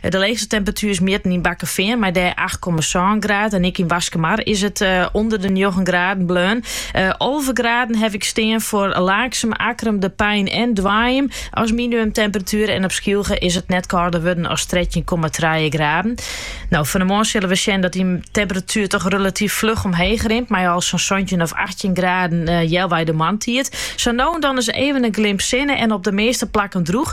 De leechste temperatuer is mjitten yn Bakkefean mei dêr acht komma sân graden en ek yn Waskemar is it ûnder de njoggen graden bleaun. Alve graden haw ik stean foar Laaksum, Akkrum, De Pein en Doaijum as minimumtemperatuer en op Skylge is it net kâlder wurden as trettjin komma trije graden. No, fan 'e moarn sille we sjen dat dy temperatuer toch relatyf fluch omheech rint mei al sa'n santjin of achttjin graden healwei de moarntiid. Sa no en dan is even in glimp sinne en op de measte plakken drûch.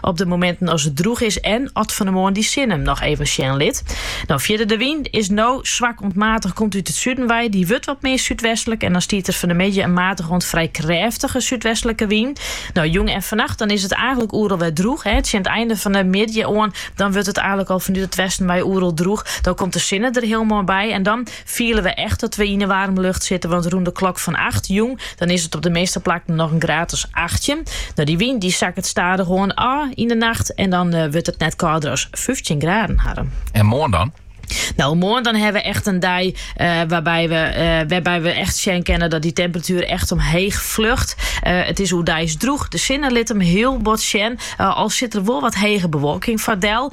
Op de mominten as it drûch is en at fan 'e moarn dy sinne him noch even sjen lit. No fierder de wyn is no swak oant matich, komt út it suden wei. Dy wurdt wat mear súdwestlik en dan stiet der fan de middei in matich oant frij krêftige súdwestlike wyn. No jûn en fannacht dan is it eigenlik oeral wer drûch. Tsjin it einde fan de middei oan dan wurdt it eigenlik al fanút it westen wei oeral drûch. Dan komt de sinne der hiel moai by en dan. Fiele we echt dat we yn 'e waarme lucht sitte, want rûn de klok fan acht jûn, dan is it op de measte plakken noch in graad as achttjin. No dy wyn dy sakket stadich oan ôf yn 'e nacht en dan wurdt it net kâlder as fyftjin graden, Harm. En moarn dan? No, moarn dan hawwe we echt in dei wêrby we wêrby we echt sjen kinne dat dy temperatuer echt omheech fljocht. It is oerdeis drûch, de sinne lit him hiel bot sjen, al sit der wol wat hege bewolking foar dan.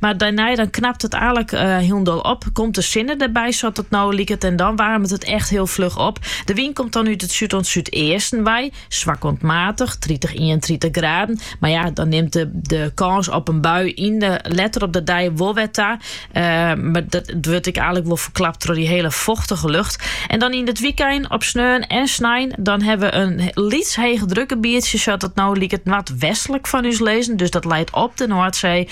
Mar dêrnei dan knapt it aalik hielendal op, komt de sinne derby sa't it no liket en dan waarmet it echt hiel fluch op. De wyn komt dan út it súd oant súdeasten wei, swak oant matig, tritich, ienentritich graden. Mar ja, dan nimt de kâns op in bui yn de letter op de dei wol wer ta. Mar dat wurdt ek aalik wol ferklapt troch dy hiele fochtige lucht. En dan yn it wykein, op sneon en snein, dan hawwe we in lyts heechedrukgebietsje sa't it no liket noardwestlik fan ús lizzen, dus dat leit op de Noardsee.